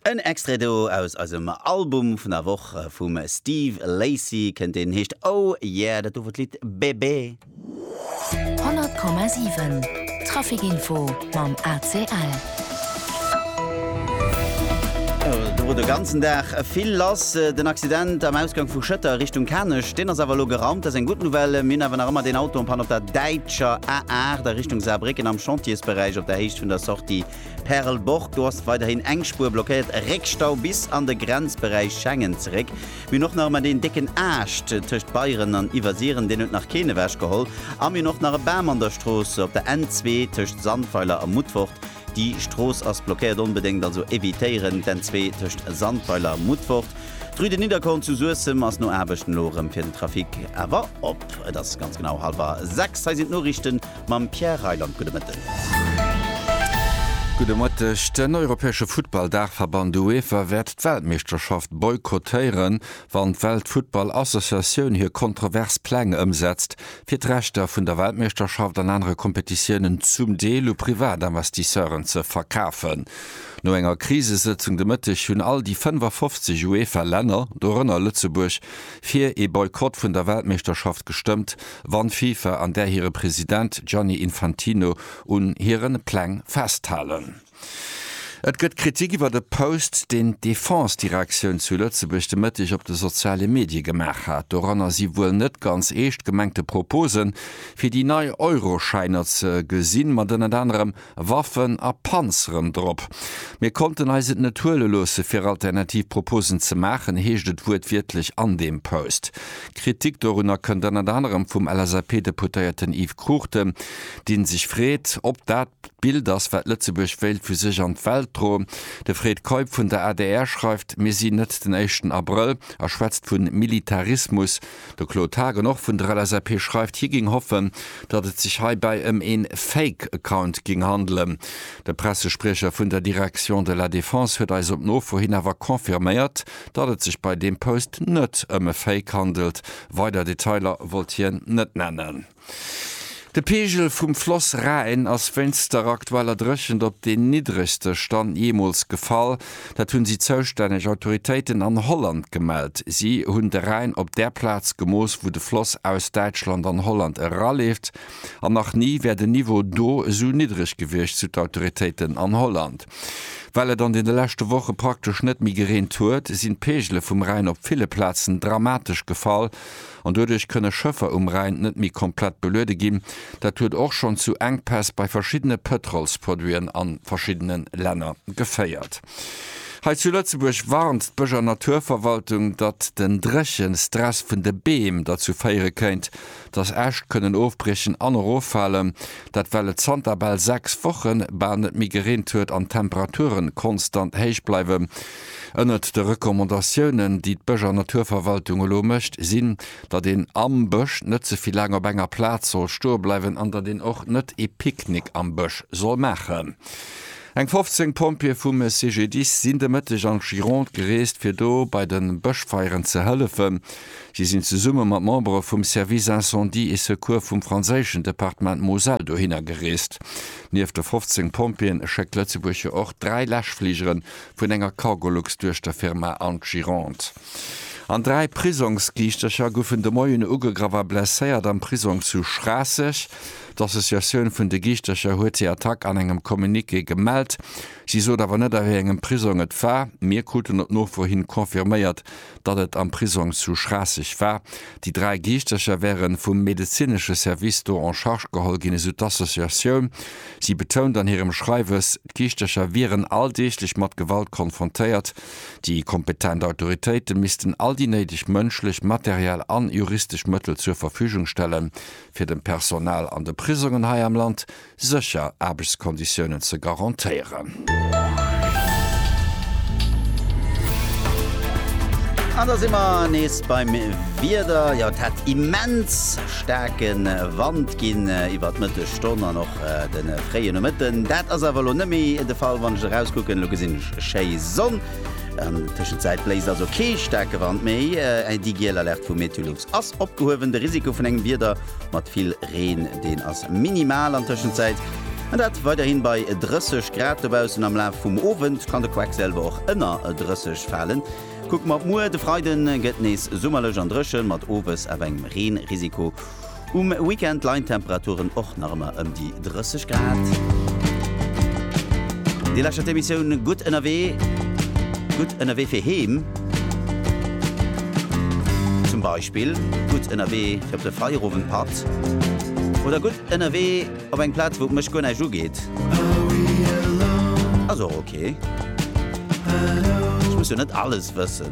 En Extrait do aus eisem Album vun der Woch vum Steve Lacy kënnt, deen heescht Oh Yeah, dat do wor d'Lidd Bébé. 100,7 Trafic Info mam ACL. Do wor de ganzen Dag vill lass. Den Accident am Ausgang vu Schëtter Richtung Kanech, deen ass awer elo geraumt, dat ass eng gutt Nouvelle. Mir hunn awer nach ëmmer deen Auto en panne op der Däitsch. Schwäizer A8 a Richtung Saarbrécken am Chantiersberäich op der Héicht vun der Sortie Perlborg. Do ass weiderhin eng Spuer blockéiert, e Réckstau bis an de Grenzberäich Schengen zeréck. Mir hunn och nach ëmmer deen décken Aascht tëscht Beieren an Iwwersiren, deen huet nach keen ewechgeholl. A mir hunn och nach e Bam an der Strooss op der N2 tëscht Sandweiler a Mutfort. Di Strooss ass blockéiert, onbedéngt also evitéieren d'N2 tëscht Sandweiler a Mutfort. D'Rue de Nidderkorn zu Suessem ass no Aarbechten elo erëm fir den Trafic awer op. Et ass ganz genau hallwer 6. Hei sinn d'Noriichten mam Pierre Reyland. Gudde Mëtten. Gudde Mëtteg. Den europäesche Futtball-Daachverband UEFA wäert d'Weltmeeschterschaft boykottéieren, wann d'Weltfuttball-Associatioun hir kontrovers Pläng ëmsetzt, fir d'Rechter vun der Weltmeeschterschaft an anere Kompetitiounen zum Deel u Privatinvestisseuren ze verkafen. No enger Krisesëtzung de Mëtteg hunn all déi 55 UEFA-Länner, dorënner Lëtzebuerg, fir ee Boykott vun der Weltmeeschterschaft gestëmmt, wann d'FIFA an där hire President Gianni Infantino un hiren Pläng festhalen. Et gëtt Kritik iwwert e Post, deen d'Defense-Direktioun zu Lëtzebuerg de Mëtteg op de soziale Medie gemaach hat. Doranner si wuel net ganz eescht gemengte Proposen, fir déi nei Euroschäiner ze gesinn, mat ënnert anerem Waffen a Panzeren drop. Mir konnten eis et net huele loosse fir alternativ Proposen ze maachen, heescht et wuertwiertlech an deem Post. Kritik dorunner kënnt ënnert anerem vum LSAP-Deputéierten Yves Cruchten, dee sech freet, ob dat. D'Bild ass, wat Lëtzebuerg wéilt vu sech an d'Welt droen. De Fred Keup vun der adr schreift, Mir sinn net den éischten Abrëll a schwätzt vu Militarismus. De Claude Haagen, och vun der LSAP, schreift, hie géing hoffen, datt et sech heibäi ëm ee Fake Account géing handelen. De Pressespriecher vun der Direction de la Défense huet eis op Nofro hin awer confirméiert, datt et sech bei deem Post net ëm e Fake handelt. Weider Detailer wollt hien net nennen. De Peegel vum Floss Rhäin ass wéinst der aktueller Dréchent op deen niddregste Stand jeemools gefall. Dat hunn si zoustänneg Autoritéiten an Holland gemellt. Si hunn de Rhäin op där Plaz gemooss, wou de Floss aus Däitschland an Holland eraleeft. An nach ni wär den Niveau do esou niddreg gewiescht, sou d'Autoritéiten an Holland. Well et an deene leschte Woche praktesch net méi gereent huet, sinn d'Peegele vum Rhäin op ville Plazen dramatesch gefall. An doduerch kënne Schëffer um Rhäin net méi komplett beluede ginn. Dat huet och schonn zu Enkpäss bei verschiddene Pëtrolsproduiten a verschiddene Länner geféiert. Hei zu Lëtzebuerg warnt d'Bësch a Naturverwaltung, datt den Dréchenstress vun de Beem derzou féiere kéint, datt Äscht kënnen ofbriechen an eroffalen. Dat well et zanter bal sechs Wochen bal net méi gereent huet an d'Temperature konstant héich bleiwen, Ënnert de Recommandatiounen, déi d'Bësch an Naturverwaltung elo mécht, sinn, datt een am Bësch net ze vill laang op enger Plaz soll stoe bleiwen an datt een och net ee Picknick am Bësch soll maachen. Eng 15 Pompjeeë vum CGDIS sinn de Mëtteg an d'Gironde gereest, fir do bei de Bëschfeieren ze hëllefen. Si sinn zesumme mat Membere vum Service Incendie et Secours vum franséischen Departement Moselle dohinner gereest. Nieft de 15 Pompjeeën schéckt Lëtzebuerg jo och dräi Läschfligeren, vun enger Cargolux duerch der Firma Antirond an dräi Prisongsgiischtercher goufen de Moien ugegraff a blesséiert am Prisong zu Schraasseg. D'Associatioun vun de Giischtercher huet déi Attack an engem Communiqué gemellt. Si sot awer net a wéi engem Prisong et war. Mir kruten op Nofro hin confirméiert, datt et am Prisong zu Schraasseg war. Déi dräi Geeschtercher wäre vum medezinesche Service do en charge geholl ginn, esou d'Associatioun. Si betount an hirem Schreiwes, d'Geeschtercher wieren alldeeglech mat Gewalt konfrontéiert. Déi kompetent Autoritéite missten all déi néideg mënschlech, materiell an juristesch Mëttel zur Verfügung stellen, fir dem Personal an de Prisongen hei am Land sécher Aarbechtskonditiounen ze garantéieren. An da si mer nees beim Wieder. Jo, et hätt immens staarke Wand ginn iwwer d'Mëtteg Stonn an och de fréie Nomëtten. Dat ass awer elo net méi de Fall. Wann ech erauskucken, elo gesinn ech schéi Sonn. An Tëschenzäit bléist also kee staarke Wand méi. Déi giel Alerte vu MeteoLux ass opgehuewen. De Risiko vun engem Wieder mat vill Reen, deen ass minimal an Tëschenzäit an dat weiderhin bei 30 Grad dobaussen. Am Laf vum Owend kann de Quackselwer och ënner 30 falen. Kucke mer op muer, de Freiden gëtt nees summerlech an dréchen, mat owes awer engem Reenrisiko. Um Weekend leien d'Temperaturen och nach ëmmer ëm déi 30 Grad. Dir lauschtert d'Emissioun Gutt ënnerwee. Gutt ënnerwee fir heem. Zum Beispill gutt ënnerwee fir op de Feierowendpatt. Oder gutt ënnerwee op eng Plaz, wou et mech guer näischt ugeet. Ass och ok. Ech muss jo net alles wëssen.